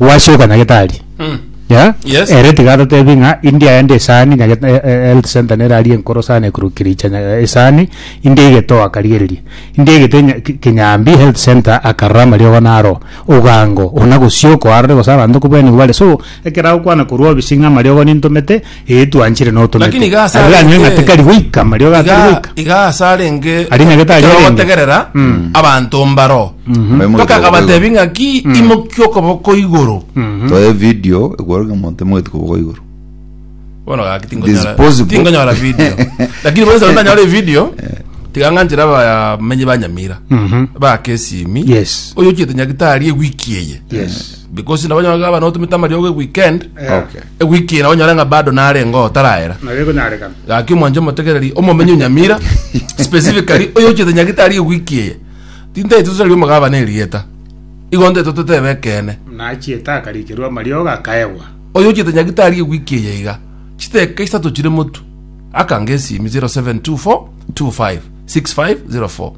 gwasioka nyagetari Mm. ya Yes. ere tiga atatebi ng'a india yende esani nyageta e- e- health center nerari enkoro sana ekurukiricha nya- esani india egetoa akarigereria india egete nya- ki- kinyambi health center akarora amariogo naro ogango ona gosioka arore gose abanto kobua nigo bare so ekero agokwana korwa obisi ng'a amariogo nintomete Ee, twanchire na otomete. Lakini iga ase Aria arenge- anywe ng'ate kari goika, mario iga gatari iga goika. iga ase arenge Ari nage tari ekero arenge. bategerera Mm. abanto mbaro Abaye moito mpaka kobogoigo. abatebi ng'aki imokia okoboko igoro Mhm. Toe video ekwaruge monte moito kobogo igoro. bono gaki tingonyora Disposable. tingonyora video lakini bonse bantanyore video tiganganchira abamenyi banyamira Mhm. bakesimi Yes. oyo ochete nyagitari ewiki eye Yes. Because nabo onye gaba notumete amariogo eweekend, Okay. ewiki eye nabo onyore ng'a bado narengeo taraera. Naye konyarekana. Gaki omwanche omotegereri omomenye onyamira specifically oyo ochete nyagitari ewiki eye. Tintete tosaria omogabane erieta. Igo ntete totebe ekeene. Nachiete akarikerwa amariogo akaegwa. Oyo ochete nyagitari ewiki eye iga. Chiteka isato chire motu. Akange esimi 0724 25 6504.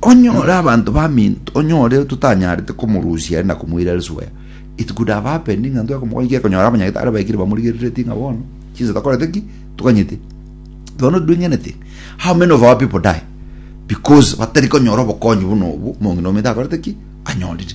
Onyore abanto baminto, onyore totanyarete komorusia are na komoira risoya. It could have happened ng'a ntweka omogwekano ki akonyora abanyagitari baikire bamorigereretie ng'a bono chinsa takorete ki toganyete. You are not doing anything. How many of our people die because batari konyora obokonyi buna obo mong'ina omanyete akorete ki anyorire.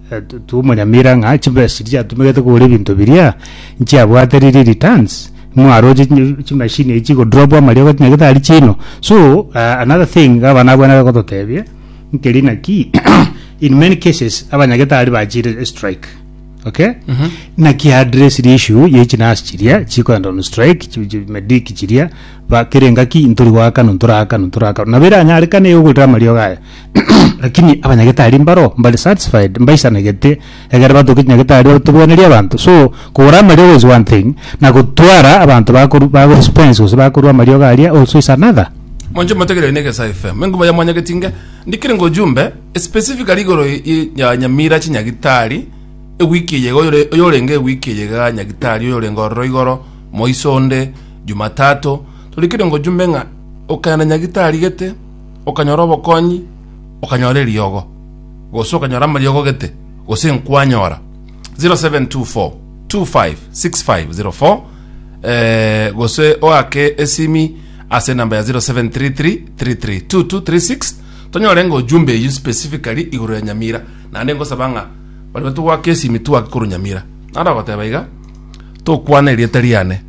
Eh, tu- tumonyamira ng'a chibesa chiria chiatumegete kogora ebinto biria nchiabwate riri returns mwaroche chi- chimashini echi chigodrop amaria gotinya getari chino so ah, another thing iga abana abwo nabo bagototebia nkeri naki in many cases abanyagetari bachire strike okay naki address the issue ye chinasi chiria chikoenda on strike chi- chi- medic chiria bakere ngaki ntori goakana ntorakana ntorakana nabo eranyarekane yogorera amariogo aya Lakini abanyagetari mbaro mbare satisfied, mbaisanagete, egere batoke chinyagetari batobwenerie abanto. So, kogora amariogo is one thing, na gotwara abanto bakoru bagorespons gose bakorua amariogo aria also is another. Monche motegereri na egesae FM. Enkuba ya mwanya getinge ndikire ngo jumbe specifically igoro ye- ye- ya Nyamira chinyagitari ewiki eye iga oyore- oyorenge ewiki eye iga nyagitari oyorenge ororo igoro moiso onde Jumatatu torikire ngo jumbe ng'a okana nyagitari gete okanyora obokonyi, okanyora eriogo, gose okanyora amariogo gete, gose nkwanyora. 0724256504 eh, gose oake esimi ase enamba ya 0733332236 tonyore ng'a ojumbe eyio specifically igoro ya nyamira naende ngosaba ng'a baria batogwaka esimi twake korwa nyamira naro ogoteba iga tokwana erieta riane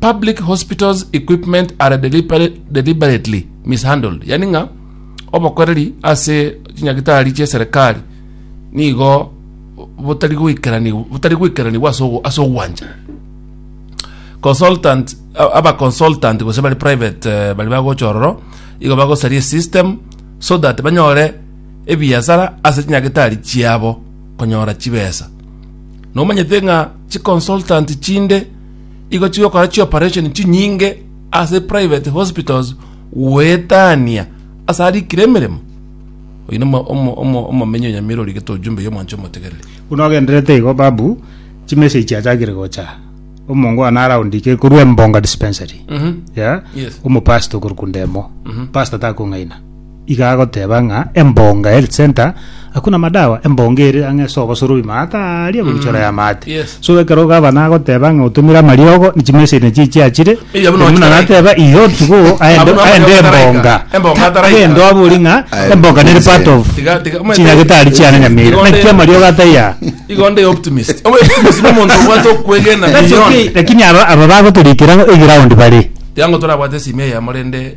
Public hospitals equipment are deliberately mishandled, yani ng'a obokoreri ase chinyagitari chia serikali nigo botari goikeranigwa ase ogwancha consultant aba consultant gose bari private eh, bari bagocha ororo igo bagosaria system so that banyore ebiasara ase chinyagitari chiabo konyora chibesa nomanyete ng'a chiconsultant chinde igo chigokora chioperation chinyinge ase private hospitals goetania ase arikire emeremo oyi nomo omo- omo- omomenyi onyamirori getojumbe ya omwancho omotegereri Buna ogenderete igo babu, chimessage chiachakire gocha. Omongo one around ike korwa Embonga dispensary. Yeah? Yes. Omopastor okorokwa Ndemo. Pastor takong'aina. Iga agoteba ng'a embonga health center hakuna madawa embonga ere ang'e ase obosoro bw'ime ataaria egobichora y'amaate Yes. so ekero gavana agoteba ng'a otomire amariogo ne chimeseni echi echiachire Eya buna buna ochitaraika. nateba iyo tiga oo aende Abuna aende amariogo ataraika. embonga Embonga ataraika. agende abori ng'a Aye, embonga nere part of Tiga- tiga- omanyete- chinyagetari chiane nyamere Tiga- naki amariogo ataiya Igo onde optimist. Obe optimist ni omonto obwate okwegena That's beyond. okay, lakini aba aba bagotorikera eground bare Tiga ngo torabwate esimi eyemo rende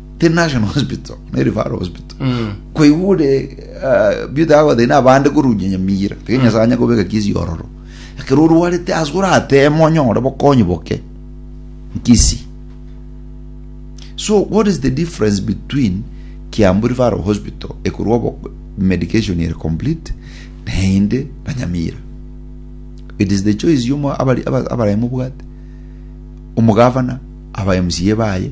the national hospital ne referral hospital Mm. kwaigure uh, beauty ago thina abande korunya nyamira tege nyasaye anya kobeka kisi ororo ekero orwarete ase oratema onyore bokonyi boke nkisi so what is the difference between kiambu referral hospital ekorwa obo- medication ere complete naende na nyamira it is the choice yomo abari- aba- abaraye mobwate omogavana aba mca baye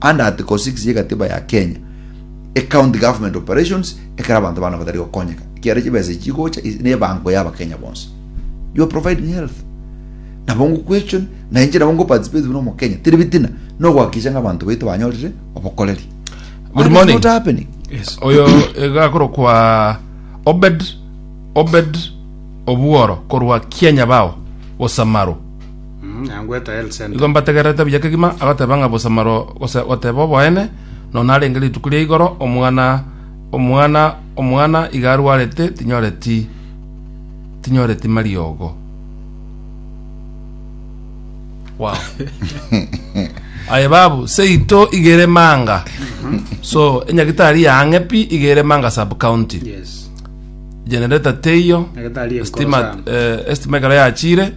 Under Article 6 y'egatiba ya Kenya, ecounty government operations ekero abanto bana batari gokonyeka, ekiagera chibesa echi chigocha is- nebango y'abakenya bonsi. You are providing health. Nabo ngu question, na inche nabo ngu participate buna omokenya. Teri bitina, nogoakikisha ng'a abanto baito banyorire obokoreri. Good That is morning. not happening. Yes. oyo egakoro kwa obed obed obuoro korwa kianya bao bosamaro Mm, yangu eta health center. Igo mbategererete buya kegima agoteba ng'a bosamaro gose goteba oboene nonya narenge rituko ria igoro omwana omwana omwana iga arwarete tinyoreti tinyoreti mariogo wow aye babu seito igere manga so enyagitari yang'e pi igere manga sub county Yes. generator teiyo Nyagetari enkoro estima sana. eh, estima ekero yachire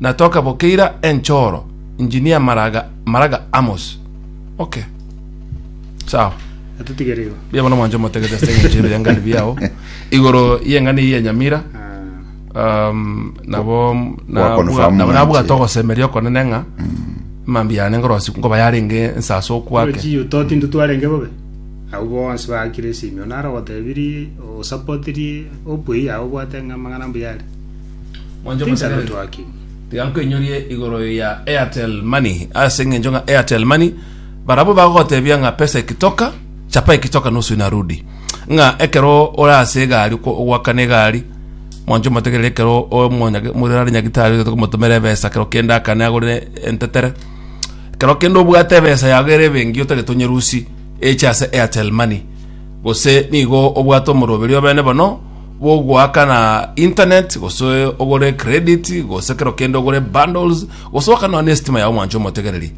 na tokabokeira enchoro injini ya maraga maraga amos okay sawa Atutigere igo. Bia bono mwancho motegete ase eng'encho ebe yangani biao igoro yeng'ani eye ya nyamira Ah, um, nabo Kwa confirm nabo mwanche. nabwate ogosemeria okonene ng'a mambi yane ngorosi ngoba yarenge ensase okwake Ochi utoti ndutwarenge bobe. Abo bonsi bakire simio naro gotebirie osapotiri opwe ya obwate ng'a magana mbuya ari. Mwanche Thanks, omochando Kenneth. twakigwe. Tiga nkwenyorie igoro ya Airtel Money ase eng'encho ng'a Airtel Money barabwo bagogotebia ng'a pesa ikitoka chapa ikitoka nusu inarudi ng'a ekero ore ase egari okwa- ogwakana egari mwancho motegerere ekero omonyage- morare nyagitari ogotoka omotomere ebesa ekero kende akane agorere entetere ekero kende obwate ebesa yago ere ebengi otagete onyerusi eche ase Airtel Money gose nigo obwate omoroberio obene bono bogoakana internet gose ogore credit gose kero kende ogore bundles gose okanwa ne estima yao mwancho omotegereri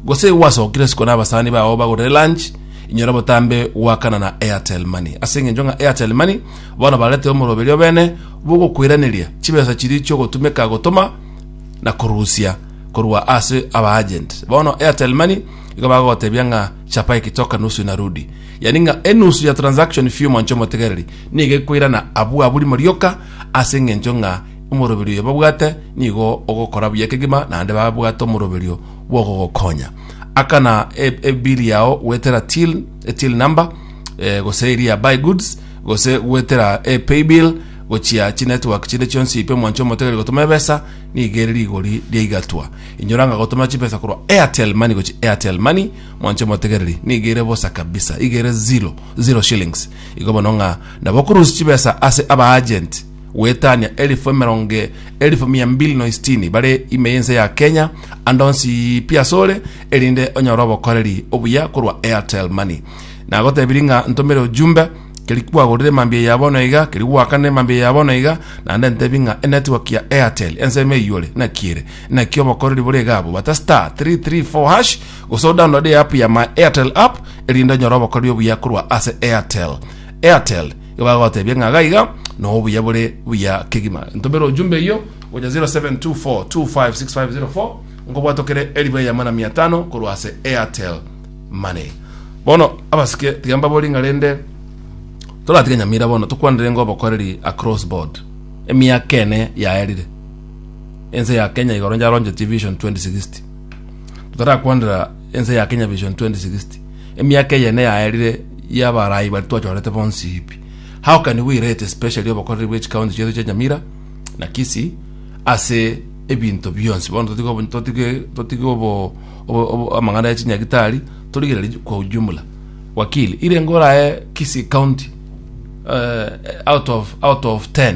gose gwasokire siko na abasani bao bagorere lunch inyora botambe gwakana na airtel money ase eng'encho ng'a airtel money bono barete omoroberio bene bogokoiraneria chibesa chiri chiogotumeka gotoma na korusia korwa ase abaagent bono airtel money igo bagotebia ng'a chapa ekitoka nusu inarudi Yani ng'a enusu ya transaction fee y'omwancho omotegereri nigo ekoirana abwo abwo rimo rioka ase engencho ng'a omoroberio oyo babwate nigo ogokora buya kegima naende babwate omoroberio bw'ogogokonya. Akana e- ebiri yao gwetera till, e till number eh, gose eri ya buy goods gose gwetera e pay bill gochia chinetwork chinde chionsi ipe omwancho omotegereri gotoma ebesa nigo ere rigori riaigatwa inyora ng'a gotoma chibesa korwa airtel money gochia airtel money Mwanche motegereri, nigo ere bosa kabisa, iga ere zero, zero shillings. Igo bono ng'a nabo okorusia chibesa ase abaagent, goetania elifu emerongo e- elifu mia mbili na isitini bare ime y'ense ya Kenya, ande onsi pi asore, erinde onyore obokoreri obuya korwa Airtel Money. Nagotebirie ng'a ntomere ojumbe, keria kwagorire mambia ya bono iga, keria gwakanire mambia ya bono iga, naende ntebi ng'a enetwork ya Airtel ensemo eiyore, naki ere. Naki obokoreri bore iga abwo, bata star three three four hash gose o download e app ya my Airtel app erinde onyore obokoreri obuya korwa ase Airtel. Airtel igo bagotebia ng'a iga iga no obuya bore buya kegima. Ntomera ojumbe eyio gocha 0724256504 nkobwate okere elifu eye amana mia tano korwa ase Airtel Money. Bono abasike tiga mbabori ng'a rende toratige Nyamira bono tokwanire ng'a obokoreri across board emiaka ene yaerire. Ense ya Kenya igoro ncharonchetie Vision 2060. Totarakwanera ense ya Kenya Vision 2060. Emiaka eyene yaerire y'abarai bari twachorete bonsi ipi. How can we rate especially obokoreri bw'echi county chiaito chia Nyamira na Kisii ase ebinto bionsi bono totige obo- totige totige obo- obo- obo- amang'ana ya chinyagitari torigereri kwa ujumla wakili irenge oraye Kisii county eh, out of out of 10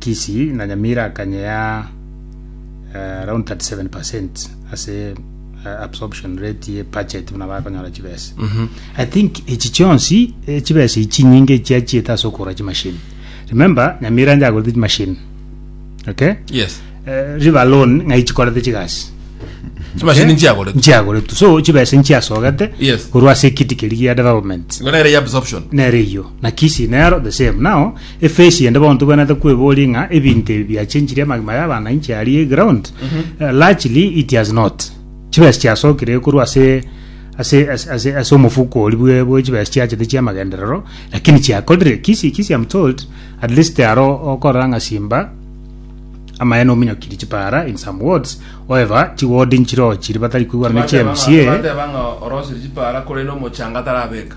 Kishi na Nyamira akanye ya eh, around 37% ase eh, absorption rate ye budget buna bakonyora chibesa i think echi chionsi eh, chibesa ichi nyinge chiachiete ase okora chimashini remember nyamira njagorete chimashini okay yes Eh, river loan ng'ai chikorete chigasi chimashini nchiagorete nchiagoretu so chibesa nchiasogete Yes. korwa ase ekiti keri gia development ngona ere ya absorption nere iyo na kisi nero the same now Efeesi ende bono tobwenerete kweboria ng'a ebinto ebi biachenchirie amagima yabo ana inche aria eground Eh, largely it has not chibesa chiasokire korwa ase ase ase- ase ase omofuko oria bwe bwe chibesa chiachete chiamagenderero lakini chiakorire kisi kisi am told at least aro okorora ng'a simba amaene ominyokiri chipara in some wards however chiward nchiro chiri batari kwigwana ne chi mca Bateba ng'a orosire chipara korende omochanga tarabeka.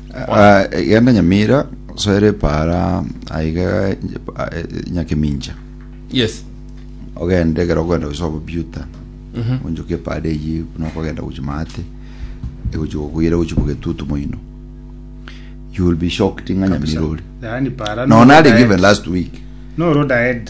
Ah, genda nyamira soera epara aiga eh, nyakemincha yes ogende ekero ogenda gosoa bobiuta Mhm. onchoke epara eyi buna okogenda gochi maate egochi gokoira gochi bogetutu moino you will be shocked ng'a nyamira ori Yaani para no none are given last week no road ahead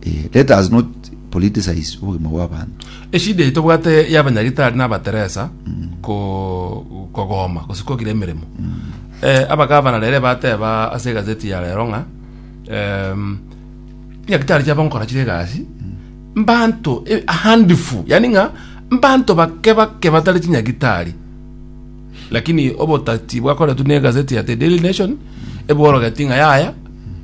Eh, let us not politicize obogima bw'abanto. Eshida eye tobwate y'abanyagitari na abateresa ko kogoma gose kogira emeremo. Eh, abagavana rere bateba ase egazeti ya rero ng'a em, nyagitari chiabo nkora chire egasi mbanto e- a handful yani ng'a mbanto bake bake batari chinyagitari lakini obotati bwakoretwe na egazeti ya the daily nation ebworogetie ng'a yaya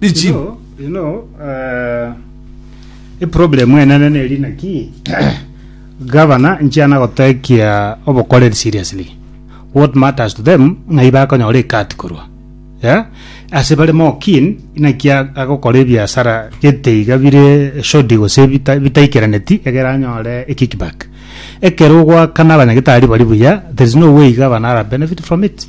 Ichi. You know, you know uh, iproblem enene neri naki gavana nchiana gotekia obokoreri seriously what matters to them ng'ai bakonyora ekati korwa yeah? ase bare more keen inaki a- agokora ebiasara gete iga bire shodi gose bita- bitaikeraneti egere anyore ekickback ekero ogwakana abanyagetari bari buya there is no way gavana ara benefit from it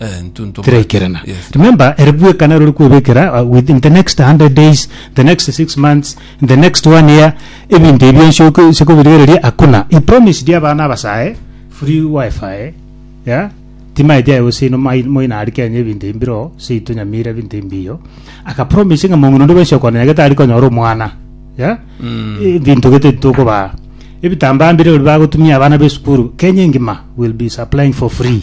Eh, ntuntu tiraikerana mbwate- yes. remember ere bweka naro ori kwebekera uh, within the next 100 days the next 6 months in the next one year ebinto ebio nsioke- siokobirigereria hakuna he promised abana abasae free wifi yeah? timaeti aye gose ino mai- moina ari kenya ebinto ebi mbiro seito nyamira ebinto ebi mbiyo akapromise ng'a mong'ina onde bwensi okona nyagete ari konyora omwana yeah? ebinto gete titokobaa ebitambaa mbire ori bagotumia abana b'esukuru kenya engima will be supplying for free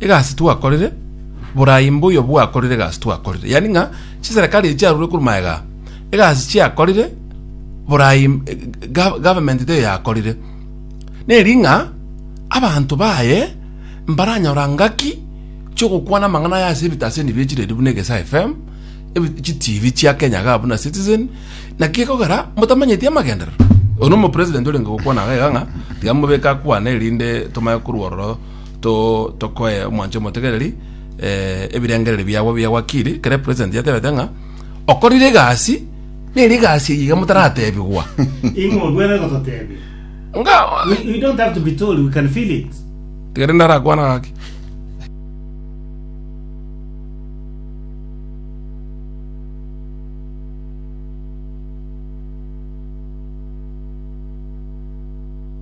Egasi twakorire, borai mbuya obwo bwakorire egasi twakorire, yaani ng'a chiserekari echi chiarure korwa magega aa, egasi chiakorire, borai eh, ga- government taiyo yakorire. Neri ng'a abanto baye mbaranyora ngaki chiogokwana amang'ana aya ase ebitaseni bire chiredi buna egesaa FM, ebi- chi TV chia Kenya igaa buna Citizen, naki gekogera motamanyeti amagenderero. Oyo nomo president orenge gokwana iga iga ng'a tiga mobeke akwane erinde tomanye korwa ororo to tokoe omwanche omotegereri eh, ebirengererio biabo bia wakiri kere president yatebete ng'a okorire egasi neri egasi eye iga motaratebigwa Ingo bwere gototebia. nga We, we don't have to be told, we can feel it. tigere ndarakwana gaki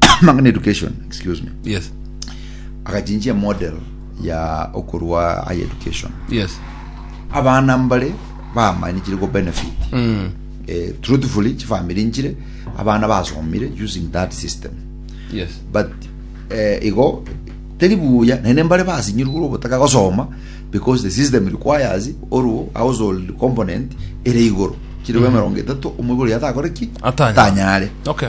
Amang'ana education, excuse me. Yes. Agachinjia model ya okorwa high education. Yes. Abana mbare bamanichire go benefit. Mm. Eh, truthfully chifamily nchire abana basomire using that system. Yes. but eh, igo teri buya nene mbare basinyirwe ore obotaka gosoma because the system requires oru household component ere igoro chiri bwa emerongo etato omwe igoro yatakore ki Atanyare. atanyare Okay.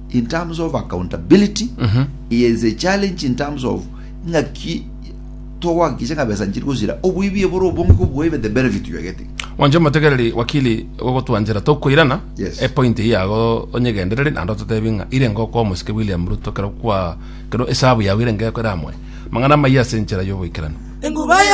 in terms of accountability Mhm. he is a challenge in terms of ng'aki togohakikisha ng'a besa nchiri gosira oboibi ebore obonge koboibe the benefit you are getting Mwanche omotegereri wakili gogotwanchera tokoirana Yes. epoint eye yago onyegendereri naende ototebi ng'a ire ngokwa omosike William Ruto kero kwa kero esabu yago ire ngeko eramoe mang'ana amaiya ase enchera y'oboikeranu Enguba yo